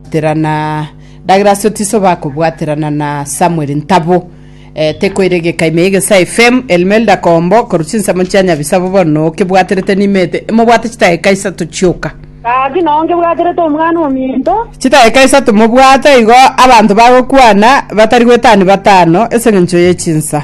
Terana ndagera ase otiso bakobwaterana na Samuel Ntabo eh, tekoiregeka ime egesa FM Elmelda Kombo koru chinsemo chia Nyabisabo bono kebwaterete nimete mobwate chitageka isato chioka Gaki nao nkebwaterete omwana ominto, chitageka isato mobwate igo abanto bagokwana batari gwetani batano ase engencho ye chinsa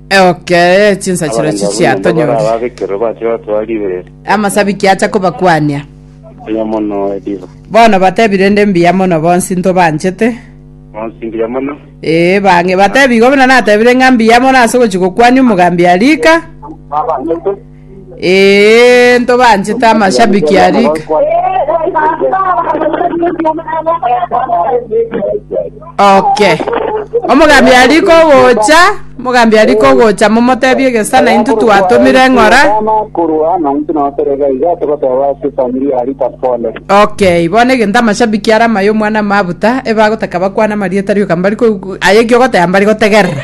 Eokere ye chinsachero Abageni echi babwo nabo chiatonyore. barababekerwe bache batoa ribe Amasabiki acha kobakwania. mbuya mono ediba. Bono batebi rende mbuya mono bonsi ntobanchete. Bonsi mbuya mono. Ee, bang'e batebi igo buna natebire ng'a mbuya mono ase ogochia gokwania omogambi arika. Eeh ntobanchete amashabiki a Rick. Okay. Omogambi ari kogocha, omogambi ari kogocha momotebie gesana intwe twatomire eng'ora. korwa na intwe nabaterega iga togoteba ase efamiri ya Rita pole. Okay, bono egento amashabiki are amayo omwana mabuta ebagotaka bakwane amarieta rioka mbari ko aye ki ogoteba mbari gotegerera.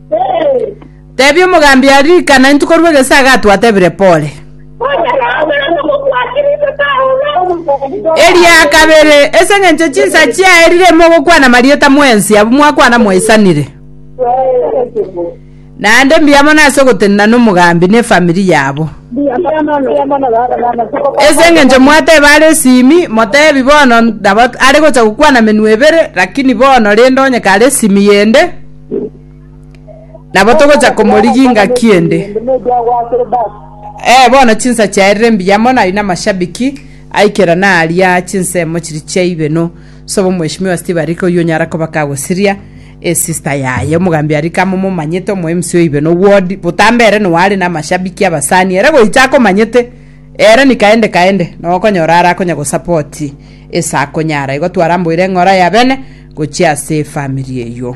Tebia omogambi aria rikana intwe korwa egesaga twatebire pole. Eria kabere, ase eng'encho chinsa chiaye rire mogokwana marieta mwensi abwo mwakwana mwaisanire. Naende mbuya mono ase ogotenena nomogambi ne efamiri yabo. Ase eng'encho mwateba are esimi, motebi bono nabo are gocha gokwana menwa ebere, lakini bono rende onye kare esimi yende, Nabo togocha komorigi ngaki ende. Eh, bono chinsa chiaerire mbuya mono ari na mashabiki aikera na aria chinsemo chiri chia ibeno. Sobo mheshimiwa Steve Arika oyio onyara koba kagosiria e sister yaye omogambi Arika amo momanyete omo MC o ibeno ward botambe ere no are na mashabiki abasani ere goicha akomanyete. Ere ni kaende kaende nogokonyora are akonya gosapoti ase akonyara. Igo twaramboire eng'ora ya bene gochia ase efamiri eyio.